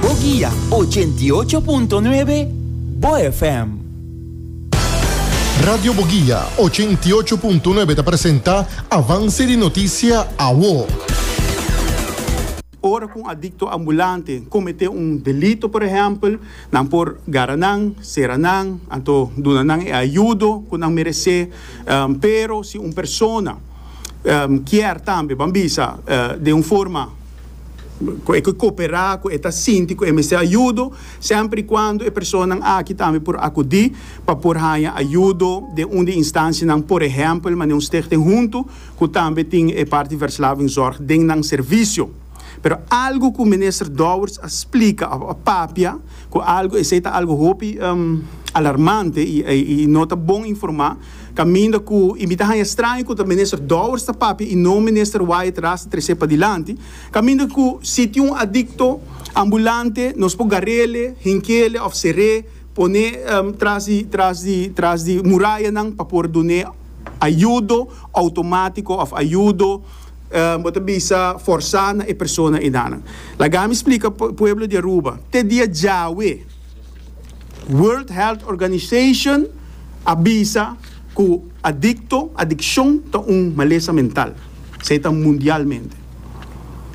Bo guia ochenta i ocho punto nuebe Bo FM. Radio Bo Guia ochenta i ocho punto nuebe ta presenta Avance di Noticia Awo. Ora ku un adikto ambulante kometé un delito por ehèmpel, nan por gara nan, sera nan, anto duna nan e ayudo ku nan meresé. Pero si un persona kier tambe, ban bisa, den un forma. ku e ke koperá, ku e ta sinti ku e mester ayudo, semper i kuando e personanan aki tambe por akudí pa por haña ayudo den un di instansianan, por ehèmpel manera un Stichting Huntu ku tambe tin e parti Verslavingzorg den nan servisio. Pero algu ku Minister Dowers a splika òf a papia ku algu esei ta algu hopi alarmante i no ta bon informá. Caminda cu y mi ta haña straño cu ta Minister Dowers ta papia y no Minister Wyatt Ras ta trece padilanti, caminda cu si tin un adicto ambulante nos por garele, hinkele of ceré, pone tras di tras di tras di murayanan pa por dune ayudo automatico of ayudo bo ta bisa forsa na e persona enanan. Laga mi splica pueblo di Aruba, te dia djawe. World Health Organization a bisa ku adikto, adikshon, ta un malesa mental. Esei ta mundialmente.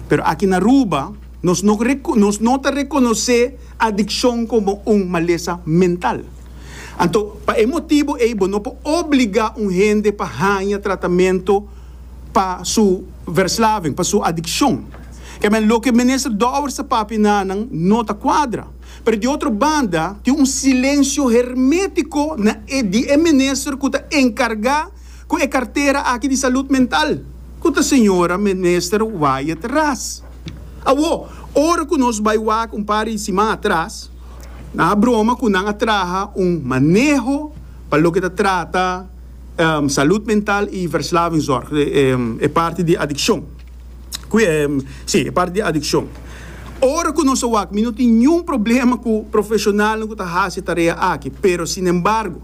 Pero aki na Aruba nos no nos no ta rekonosé adikshon komo un malesa mental. Anto pa e motibu ei bo no por obligá un hende pa haña tratamento pa su verslaving, pa su adikshon. Kèmen loke Minister Dowers a papia na nan no ta kuadra. pero di otro banda tin un silensio hermetico na e di e minister cu ta encarga cu e cartera aki di salud mental, cu ta señora minister Wyatt Ras. Awo, ora cu nos bay wak un par di siman atras, nan a broma cu nan a traha un maneho pa loke ta trata salud mental y verslavingzorg, e parti di adiccion. si, e parti di adikshon. Ora ku nos ta wak, mi no tin niun problema ku profeshonalnan ku ta hasi e tarea aki, pero sinembargo,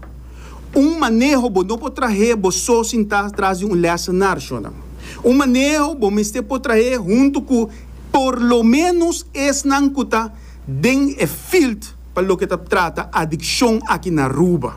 un maneho bo no por trahe bo so sintá tras di un lèsen na arshonan. Un maneho bo mester por trahe huntu ku por lo ménos esnan ku ta den e field pa loke ta trata adikshon aki na Aruba.